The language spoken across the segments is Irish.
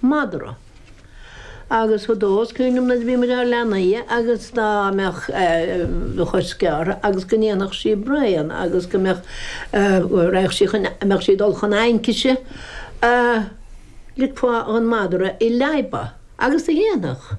madra. Agus fadó is cuimhin liom nuair a bhí muid inár leanaí agus dá mbeadh do chos gearrtha agus go ndéanfadh sí braon agus go mbeadh go raghadh sí chun mbeadh sí ag dul chun aincise ligfeá dhon madra í a leadhbadh agus do dhéanfadh.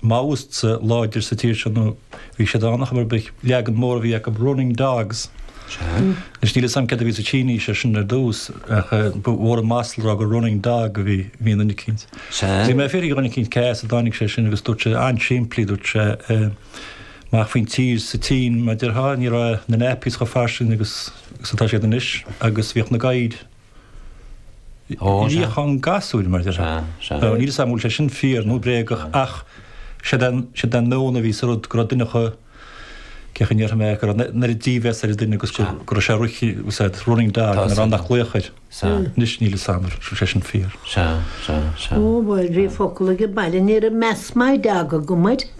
Maoists láidir sa tír seo nó bhí siad ann ach ba é an leagan mór a bhí acu running dogs. Anois níl 'fhios a'm céard a bhí sa tSínis ar sin ar dtús ach ba mhór an masla a rá gur running dog a bhí bhí in duine eicínt. Bhí mé ag fiafraí de dhuine eicínt cé as a dtáinig sé sin agus dúirt sé, an-simplí, dúirt sé amach faoin tír sa tSín mar déarfá, ní raibh na nappies chomh fairsing agus atá siad anois agus bhíodh na gadhair níochán gasúir, mar a deir sé. Níl 'fhios a'm an bhfuil sé sin fíor nó bréagach ach siod an, siod an meon a bhí sa rud, go raibh duine chun, cé chaoi a ndéarfaidh mé, go raibh an oiread dímheas ar an duine agus go, go raibh sé rith, what's that, running dog, nach raibh aon luach air. Anois níl 'fhios a'm an bhfuil sé sin fíor. Ó bhuel, bhí focal age baile, ní raibh meas madra aige air go.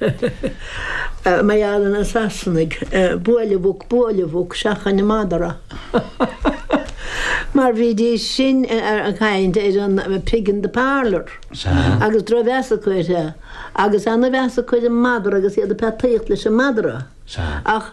Mar gheall ar na Sasanaigh buail an mhuc buail an mhuc seachain an madra mar bhídís sin ag caint ar an pig in the parlour agus drochmheas acu air agus ana-mheas acu ar an madra agus iad ag peataíocht leis an madra ach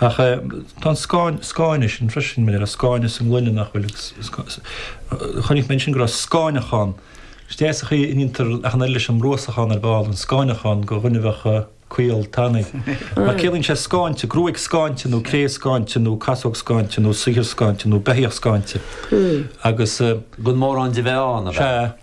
Ach tá an scáineadh sin freisin, mar a scáineadh sa ngloine nach bhfuil agus chonaic mé ansin go raibh scáineachán. Is deas an chaoi a ndéantar achán air, leis an mbruasachán ar ball, an scáineachán go dhuine a bheadh caol tanaí. Mar ciallaíonn sé scáinte, gruaig scáinte nó cré scáinte nó casóg scáinte nó saothar scáinte nó beithíoch scáinte agus. Gan mórán de bheith ann, a bheadh.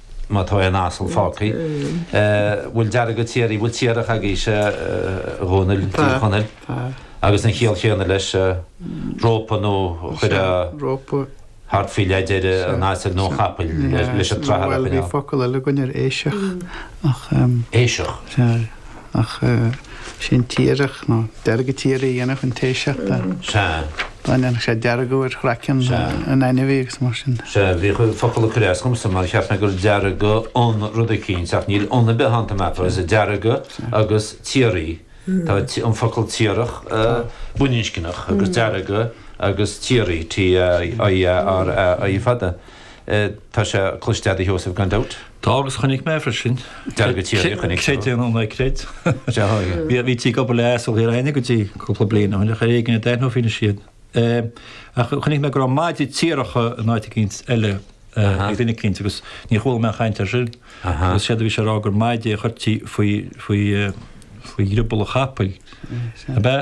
má tá aon asal fágtha. bhfuil deargadh tiaraí, bhfuil tiarach agaibhse, a Dhónaill, i dTír Chonaill, agus an chiall chéanna leis, rópa nó chuireadh thart faoi leath deiridh an asail nó an chapaill leis an tsrathar a choinneáil. Bhí focal eile againn air, éiseach. Éiseach? Ach sin tiarach nó deargadh tiaraí a dhéanfadh an t-éiseach. Sea. Dá ndéanfadh sé deargadh ar chraiceann an ainmhí agus mar sin. Sea, bhí an focal ag cur as domsa mar cheap mé gur deargadh an rud eicínt ach níl an ar bith ann, tá mé ag ceapadh, is é deargadh agus tiaraí. Tá an focal tiarach baininscneach agus deargadh agus tiaraí, TIARAI, fada. Tá sé cloiste a'd a Sheosaimh, gan dabht. Tá, agus chonaic mé freisin. Deargadh tiaraí, chonaic tú. Creid é nó ná creid. Sea, bhítí ag obair le asail againne go dtí cúpla bliain ó shin, ach ar éigin a d'aithneofaí anois iad. Ach chonaic mé go raibh maidí tiaracha in áit eicínt eile ag duine eicínt agus ní chuala mé aon chaint air sin. Agus séard a bhí sé a rá gur maidí a chuirtí faoi, faoi, faoi dhrioball an chapaill, ab ea?